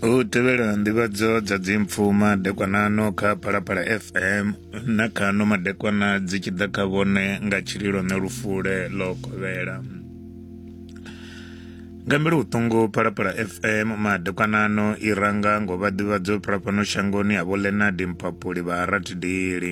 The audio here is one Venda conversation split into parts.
u tevhela nḓivhadzo dza dzimpfu madekwanano kha phalaphala fm na khano madekwana dzi tshi ḓa kha vhone nga tshililo ne lufule ḽo kovhela nga mbele vhuṱungu phalaphala fm madekwanano i ranga ngo vha ḓivhadzo phalafhano shangoni ha vho lenard mpapuli vha ha ratidili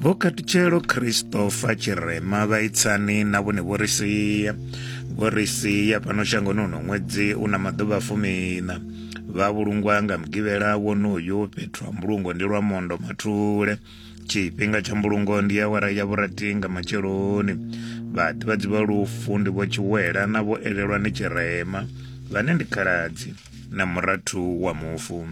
vho katutshelo christopher tshirema vha itsani na vhone vho ri sia vho ri sia fhano shangoni uno ṅwedzi u na maḓuvha fumina vha vhulungwa nga mugivhela wonoyu fhethu ha mbulungo ndi lwa mondo mathule tshifhinga tsha mbulungo ndi awara ya vhurathi nga matsheloni vhaḓivhadzi vha lufu ndi vho tshiwela na vho elelwa ni tshirema vhane ndi khaladzi na murathu wa mufu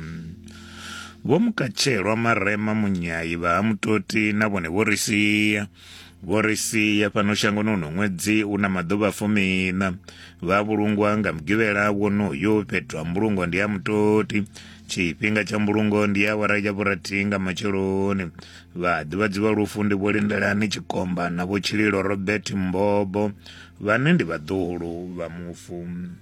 Vho Mukachelwa Marema Munyai vha ha Mutoti na vhone vho ri sia vho ri sia fhano shangoni uno ṅwedzi u na maḓuvha fumiṋa vha vhulungwa nga mugivhela wonoyo fhethu ha mbulungo ndi ha mutoti tshifhinga tsha mbulungo ndi ya awara ya vhurathi nga matsheloni vhaḓivhadzi vha lufu ndi vho lindelani tshikomba na vho tshililo robert mbobo vhane ndi vhaḓuhulu vha mufu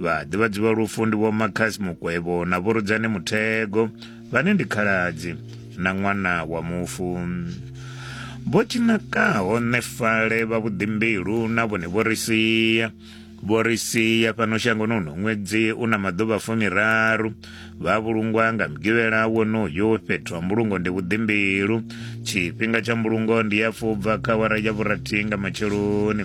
vhaḓivhadzi vha lufu ndi vho makhasi mukwevho na vhorudzani muthego vhane ndi khaladzi na ṅwana wa mufu vho tshinakaho nefale vha vhuḓimbilu na vhone vho ri sia vho ri sia fhano shangoni uno ṅwedzi u na maḓuvha fumiraru vha vhulungwa nga mugivhela wonoyo fhethu ha mbulungo ndi vhuḓimbilu tshifhinga tsha mbulungo ndi ya fubva kha wara ya vhurathi nga matsheloni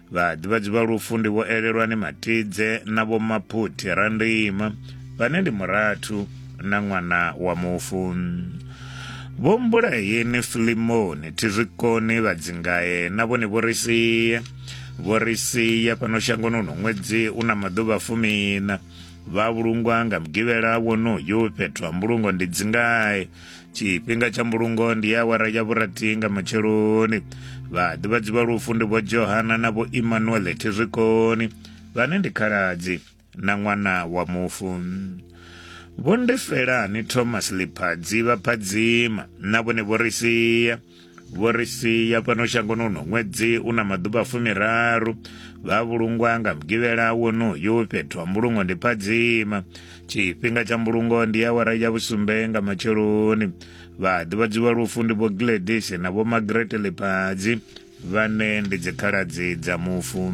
Vhaḓivhadzi vha lufu ndi vho Elelwani Matidze na vho Maphuthi Randima vhane ndi murathu na ṅwana wa mufu. Vho Mbulayeni Filimoni Thizwikoni Vhadzingae na vhone vho ri sia vho ri sia fhano shangoni uno ṅwedzi u na maḓuvha fumina vha vhulungwa nga mugivhela wonoyu fhethu ha mbulungo ndi dzingae tshifhinga tsha mbulungo ndi awara ya vhurathi nga matsheloni vhaḓivhadzi vha lufu ndi vho johana na vho emmanuel thizwikoni vhane ndi khaladzi na ṅwana wa mufu vho ndefelani thomas liphadzi vha phadzima na vhone vho ri sia vho ri sia fhano shangoni uno ṅwedzi u na maḓuvha fumiraru vha vhulungwa nga mugivhela wonoyu fhethu ha mbulungo ndi phadzima tshifhinga tsha mbulungo ndi awara ya vhusumbe nga matsheloni vha ḓivhadziwa lufu ndi vho gladis na vho magrete ḽiphadzi vhane ndi dzikhaladzi dza mufu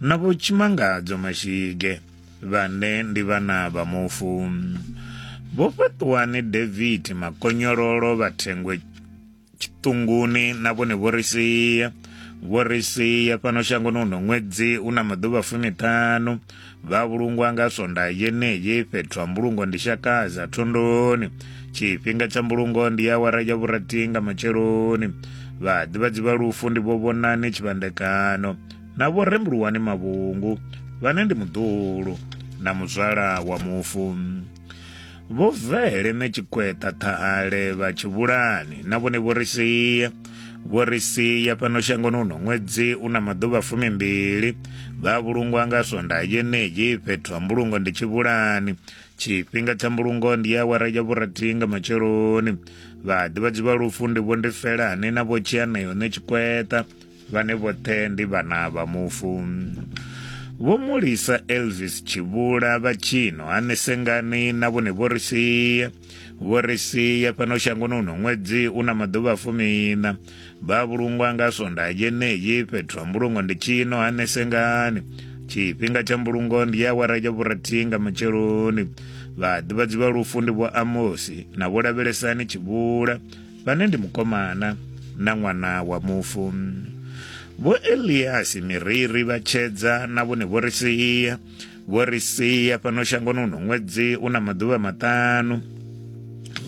na vho tshimangadzo mashige vhane ndi vhana vha mufu vho fhaṱuwani david makonyololo vha thengwe tshiṱunguni na vhone vho ri sia vho ri sia fhano shangoni uno ṅwedzi u na maḓuvha fumiṱhanu vha vhulungwa nga swonda yeneyi fhethu ha mbulungo ndi shakaza thondoni tshifhinga tsha mbulungo ndi ya wara ya vhurathi nga matsheloni vhaḓivhadzi vha lufu ndi vho vhonani tshivhandekano na vho Rembuluwani Mavhungu vhane ndi muḓulu na muzwala wa mufu vho vele ne tshikweta ṱhahale vha tshivhulani na vhone vho ri sia vho ri sia fhano shangoni uno ṅwedzi u na maḓuvha fumimbili vha vhulungwa nga swonda yenei fhethu ha mbulungo ndi tshivhulani tshifhinga tsha mbulungo ndi ya awara ya vhurathi nga matsheloni vhaḓivhadzi vha lufu ndi vho ndi felani na vho tshianeyo ne tshikweta vhane vhoṱhe ndi vhana vha mufu vho mulisa elvis tshivhula vha tshino hanesengani na vhone vho ri sia vho ri sia fhano shangoni uno ṅwedzi u na maḓuvha fumina vha vhulungwa nga sonda yeneyi fhethu ha mbulungo ndi tshino hanesengani tshifhinga tsha mbulungo ndi ya wara ya vhurathihi nga matsheloni vhaḓivhadzi vha lufu ndi vho amosi na vho lavhelesani tshivhula vhane ndi mukomana na ṅwana wa mufu vho eliasi miriri vha tshedza na vhone vho ri sia vho ri sia fhano shangoni uno ṅwedzi u na maḓuvha maṱanu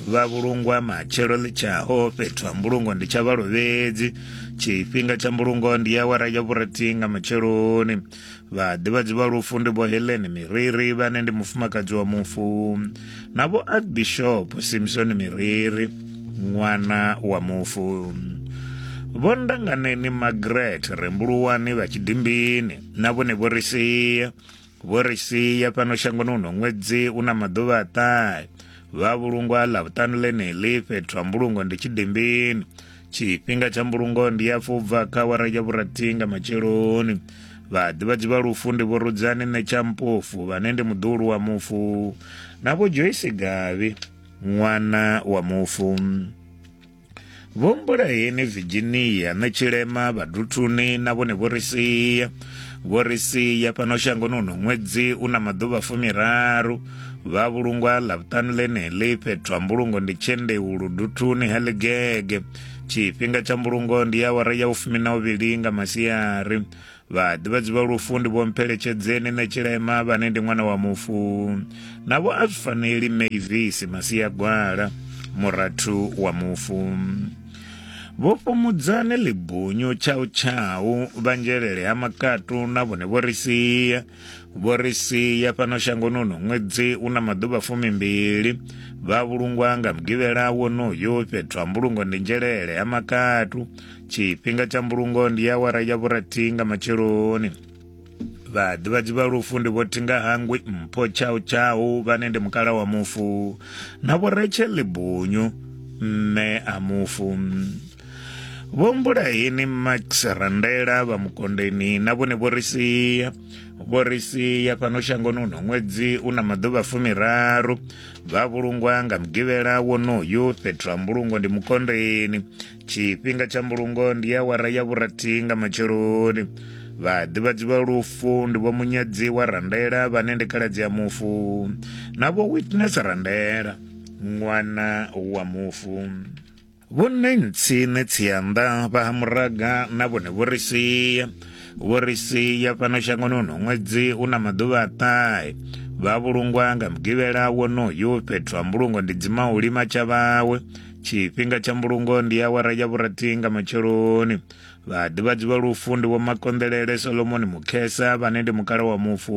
vha vhulungwa matshelo ḽi tshaho fhethu ha mbulungo ndi tsha vhalovhedzi tshifhinga tsha mbulungo ndi awara ya vhurathi nga matsheloni vhaḓivhadzi vha lufu ndi vho heleni miriri vhane ndi mufumakadzi wa mufu na vho archbishop simsoni miriri ṅwana wa mufu vho ndanganeni magret rembuluwani vha tshidimbini na vhone vho ri sia vho ri sia fhano shangoni uno ṅwedzi u na maḓuvha a ṱahe vha vhulungwa ḽa vhuṱanu ḽeneḽi fhethu ha mbulungo ndi tshidimbini tshifhinga tsha mbulungo ndi ya fubva kha wara ya vhurathi nga matsheloni vhaḓivhadzi vha lufu ndi vho rudzani nṋe tsha mpofu vhane ndi muḓulu wa mufu na vho joyce gavhi ṅwana wa mufu vho mbulaheni virginia nṋe tshilema vhaduthuni na vhone vho ri sia vho ri sia fhano shangoni uno ṅwedzi u na maḓuvha fumiraru vha vhulungwa ḽavhuṱanu ḽeneḽi fhethu ha mbulungo ndi tshendeu luduthuni ha ḽigege tshifhinga tsha mbulungo ndi awara ya ufumi na uvhili nga masiari vhaḓivhadzi vha lufu ndi vhompheletshedzeni nṋe tshilema vhane ndi ṅwana wa mufu navho a zwi faneli mavis masiagwala murathu wa mufu vho fhumudzane ḽibunyu tshau tshau vhanzhelele ha makatu na vhone vho ri sia vho ri sia fhano shangoni uno ṅwedzi u na maḓuvha fumimbili vha vhulungwa nga mugivhela wonoyo fhethu ha mbulungo ndi nzhelele ha makatu tshifhinga tsha mbulungo ndi ya wara ya vhurathi nga matsheloni vhaḓivhadzi vha lufu ndi vho thinga hangwi mpho tshau tshau vhane ndi mukala wa mufu na vho retshe libunyu mme a mufu vho mbulaeni max randela vha mukondeni na vhone vho ri sia vho ri sia fhano shangoni uno ṅwedzi u na maḓuvha fumiraru vha vhulungwa nga mugivhela wonoyu fhethu ha mbulungo ndi mukondeni tshifhinga tsha mbulungo ndi ya wara ya vhurathi nga matsheloni vhaḓivhadzi vha lufu ndi vho munyadzi wa randela vhane ndi khaladzi ya mufu na vho witness randela ṅwana wa mufu Vhonne ntsi ne tsianda vha ha muraga na vhone vho ri sia vho ri sia fhano shangoni uno ṅwedzi u na maḓuvha a ṱahe vha vhulungwa nga mugivhela wonoyu fhethu ha mbulungo ndi dzima u lima tsha vhawe tshifhinga tsha mbulungo ndi awara ya vhurathi nga matsheloni vhaḓivhadzi vha lufu ndi vho makonḓelele solomoni mukhesa vhane ndi mukala wa mufu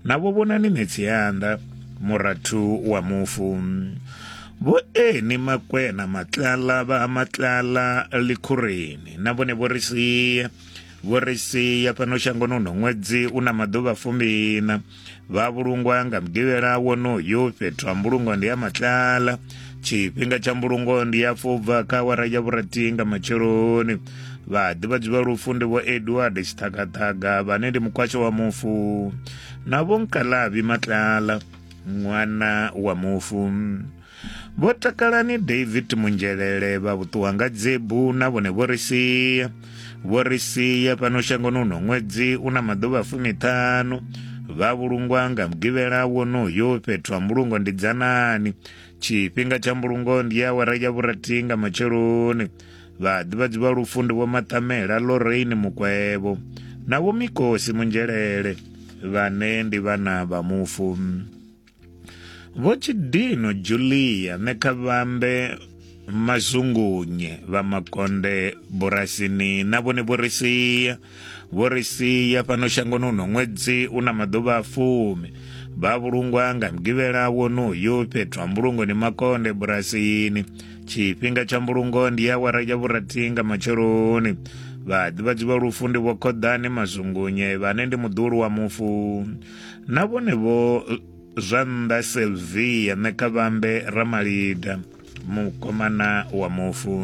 navho vhonani Netsianda murathu wa mufu vho eni makwena matlala vha ha matlala likhureni na vhone vho ri sia vho ri sia fhano shangoni uno ṅwedzi u na maḓuvha fumbina vha vhulungwa nga mugivhela wonoyo fhethu ha mbulungo ndi ha matlala tshifhinga tsha mbulungo ndi ya fubva kha awara ya vhurathihi nga matsheloni vhaḓivhadzi vha lufu ndi vho edward tshiṱhakaṱhaka vhane ndi mukwasho wa mufu na vho nkalavi matlala ṅwana wa mufu vho takalani david munzhelele vha vhuṱuwa nga dzebu na vhone vho ri sia vho ri sia fhano shangoni uno ṅwedzi u na maḓuvha fumiṱhanu vha vhulungwa nga mugivhela wonoyo fhethu ha mbulungo ndi dzanani tshifhinga tsha mbulungo ndi awara ya vhurathi nga matsheloni vhaḓivhadzi vha lufu ndi vho maṱamela loreini mukwevho na vho mikosi munzhelele vhane ndi vhana vha mufu vho tshidino julia nekhavambe mazungunye vha makonde burasini na vhone vho ri sia vho ri sia fhano shangoni uno ṅwedzi u na maḓuvha a fumi vha vhulungwa nga mugivhela wonoyu fhethu ha mbulungo ni makonde bulasini tshifhinga tsha mbulungo ndi ya wara ya vhurathi nga matsheloni vhaḓivhadzi vha lufu ndi vhokhoḓani mazungunye vhane ndi muḓulu wa mufu na vhone vho zwa nnḓa selvia ṋekavhambe ramalida mukomana wa mufu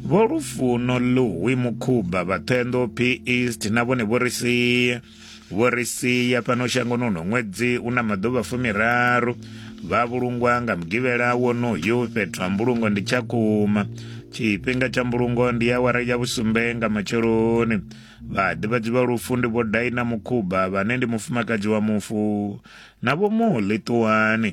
vho lufuno luwi mukhuba vhaṱhenḓo p east na vhone vho ri sia vho ri sia fhano shangoni uno ṅwedzi u na maḓuvha fumiraru vha vhulungwa nga mugivhela wonoyu fhethu ha mbulungo ndi tshakhuma tshifhinga tsha mbulungo ndi awara ya vhusumbe nga matsheloni vhaḓivhadzi vha lufu ndi vho daina mukhuba vhane ndi mufumakadzi wa mufu na vho muḽi ṱuwani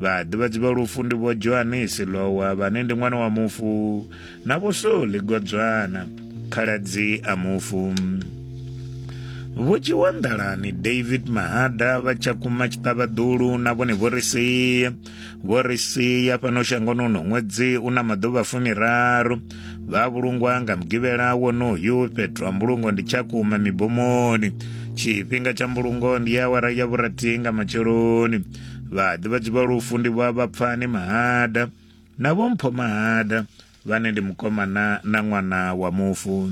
vhaḓivhadzi vha lufu ndi vho johanisi lowa vhane ndi ṅwana wa mufu na vho soli godzwana khaladzi a mufu vho dzhiwa nḓalani david mahada vha tshakhuma tshiṱavhaḓulu na vhone vho ri sia vho ri sia fhano shangoni uno ṅwedzi u na maḓuvha fumiraru vha vhulungwa nga mugivhela wonoyu fhethu ha mbulungo ndi tshakhuma mibomoni tshifhinga tsha mbulungo ndi awara ya vhurathi nga matsheloni vhaḓivhadzi vha lufu ndi vha vhapfani mahada na vhompho mahada vhane ndi mukomana na ṅwana wa mufu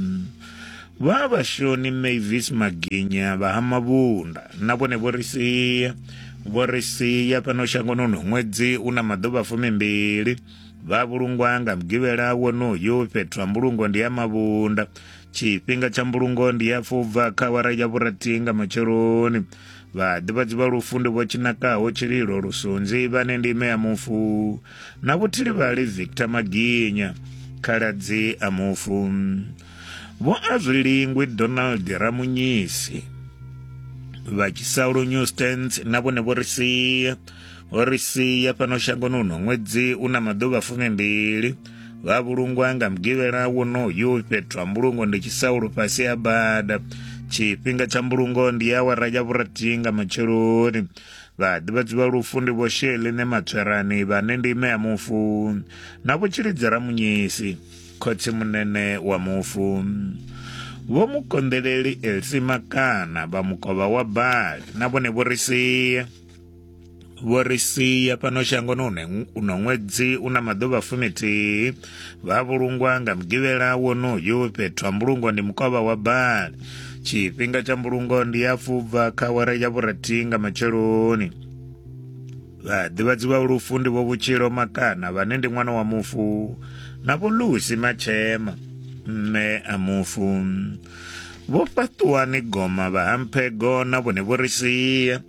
vha vhashoni mavis maginya vha ha mavhunda na vhone vho ri sia vho ri sia fhano shangoni uno ṅwedzi u na maḓuvha fumimbili vha vhulungwa nga mugivhela wonoyo fhethu ha mbulungo ndi ya mavhunda tshifhinga tsha mbulungo ndi ya fubva kha awara ya vhurathi nga matsheloni vhaḓivhadzi vha lufu ndi vho tshinakaho tshililo lusunzi vhane ndi ime ya mufu na vhuthilivhali victor maginya khaladzi a mufu vho azwilingwi donald ramunyisi vha tshisalo newstans na vhone vho ri sia O ri sia fhano shangoni uno ṅwedzi u na maḓuvha fumimbili vha vhulungwa nga mugivhela wonoyu fhethu ha mbulungo ndi tshisaulo fhasi ha bada tshifhinga tsha mbulungo ndi awara ya vhurathi nga matsheloni vhaḓivhadzi vha lufu ndi vho sheline matswerani vhane ndi ime ya mufu na vho tshilidzera munyisi khotsi munene wa mufu vho mukonḓeleli elsi makana vha mukovha wa bali na vhone vho ri sia vho ri sia fhano shangoni uno ṅwedzi u na maḓuvha fumithihi vha vhulungwa nga mugivhela wonoyu fhethu ha mbulungo ndi mukovha wa bali tshifhinga tsha mbulungo ndi ya fubva kha wara ya vhurathi nga matsheloni vhaḓivhadzi vha lufu ndi vho vhutshilo makana vhane ndi ṅwana wa mufu na vho lusi matshema mme a mufu vho fhaṱuwani goma vha hamphego na vhone vho ri sia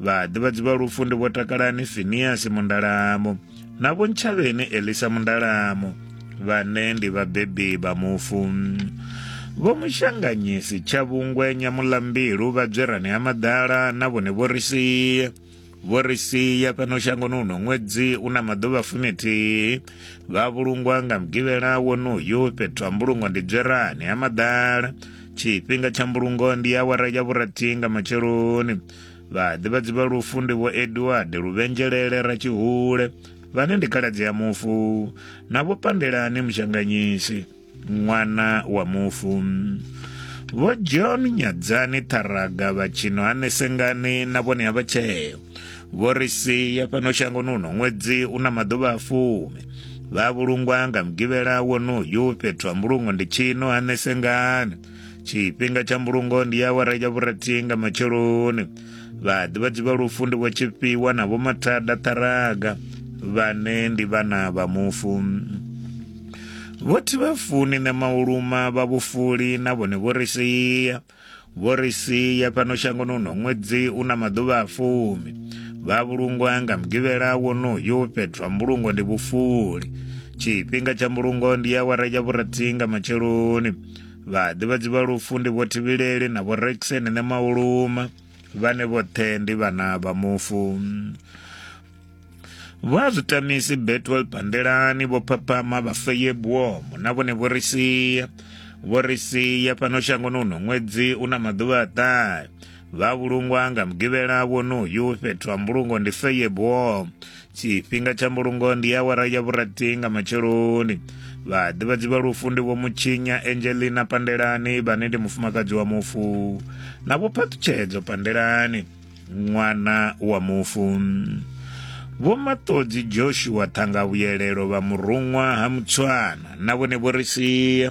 vhaḓivhadzi vha lufu ndi vho takalani finiasi mundalamo na vho ntshavheni elisa mundalamo vhane ndi vhabebi vha mufu vho mushanganyisi tsha vhungwe nyamulambilu vha dzwerani ha maḓala na vhone vho ri sia vho ri sia fhano shangoni uno ṅwedzi u na maḓuvha fumithihi vha vhulungwa nga mugivhela wonoyu fhethu ha mbulungo ndi dzwerani ha maḓala tshifhinga tsha mbulungo ndi awara ya vhurathi nga matsheloni vhaḓivhadzi vha lufu ndi vho edward luvhenzhelele ratshihule vhane ndi khaladzi ya mufu na vho pandelani mushanganyisi ṅwana wa mufu vho john nyadzani ṱharaga vhatshino hanesengani na vhone ha vhatsheo vho ri sia fhano shangoni uno ṅwedzi u na maḓuvha a fumi vha vhulungwa nga mugivhela wonoyu fhethu ha mbulungo ndi tshino hanesengani tshifhinga tsha mbulungo ndi awara ya vhurathi nga matsheloni vhaḓivhadzi vha lufu ndi vho tshifhiwa na vho mathada ṱharaga vhane ndi vhana vha mufu vho thivhafuni na mauluma vha vhufuli na vhone vho ri sia vho ri sia fhano shangoni uno ṅwedzi u na maḓuvha a fumi vha vhulungwa nga mugivhela wonoyo fhethu ha mbulungo ndi vhufuli tshifhinga tsha mbulungo ndi awara ya vhurathi nga matsheloni vhaḓivhadzi vha lufu ndi vho thivhileli na vho rexeni ne mauluma vhane vhoṱhe ndi vhana vha mufu vho a zwitamisi betwel pandelani vho phaphama vhafeye buomo na vhone vho ri sia vho ri sia fhano shangoni uno ṅwedzi u na maḓuvha a ṱahe vha vhulungwa nga mugivhela wonoyu fhethu ha mbulungo ndi feye buomo tshifhinga tsha mbulungo ndi awara ya vhurathi nga matsheloni vhaḓivhadzi vha lufu ndi vho mutshinya angelina pandelani vhane ndi mufumakadzi wa mufu na vho phaṱutshedzo pandelani ṅwana wa mufu vho maṱodzi joshua ṱhangavhuyelelo vha muruṅwa ha mutswana na vhone vho ri sia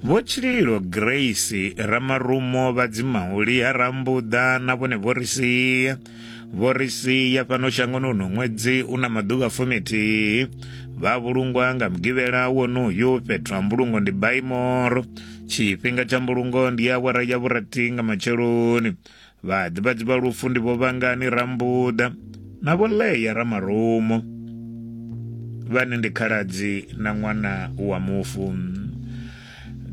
Vho Tshililo Grace Ramarumo vha Dzimahuli ha Rambuḓa na vhone vho ri sia vho ri sia fhano shangoni uno ṅwedzi u na maḓuvha fumithihi vha vhulungwa nga mugivhela wonoyo fhethu ha mbulungo ndi baimoro tshifhinga tsha mbulungo ndi awara ya vhurathi nga matsheloni Vhaḓivhadzi vha lufu ndi vho Vhangani Rambuḓa na vho Leya Ramarumo vhane ndi khaladzi na ṅwana wa mufu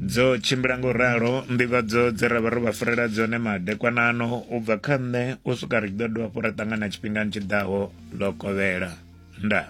dzo tshimbila ngo ralo nḓivhadzo dze ra vha ro vha farela dzone madekwanano u bva kha nṋe u swika ri tshi ḓo dovha fho ra ṱangana tshifhingani tshi ḓaho ḽo kovhela ndaa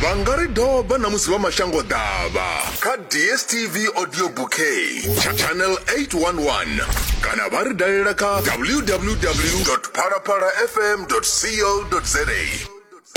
vha nga ri doba na musi vha mashango ḓavha kha dstv audio bouquet tsha channel 811 kana vha ri dalela kha www phalaphalafm co za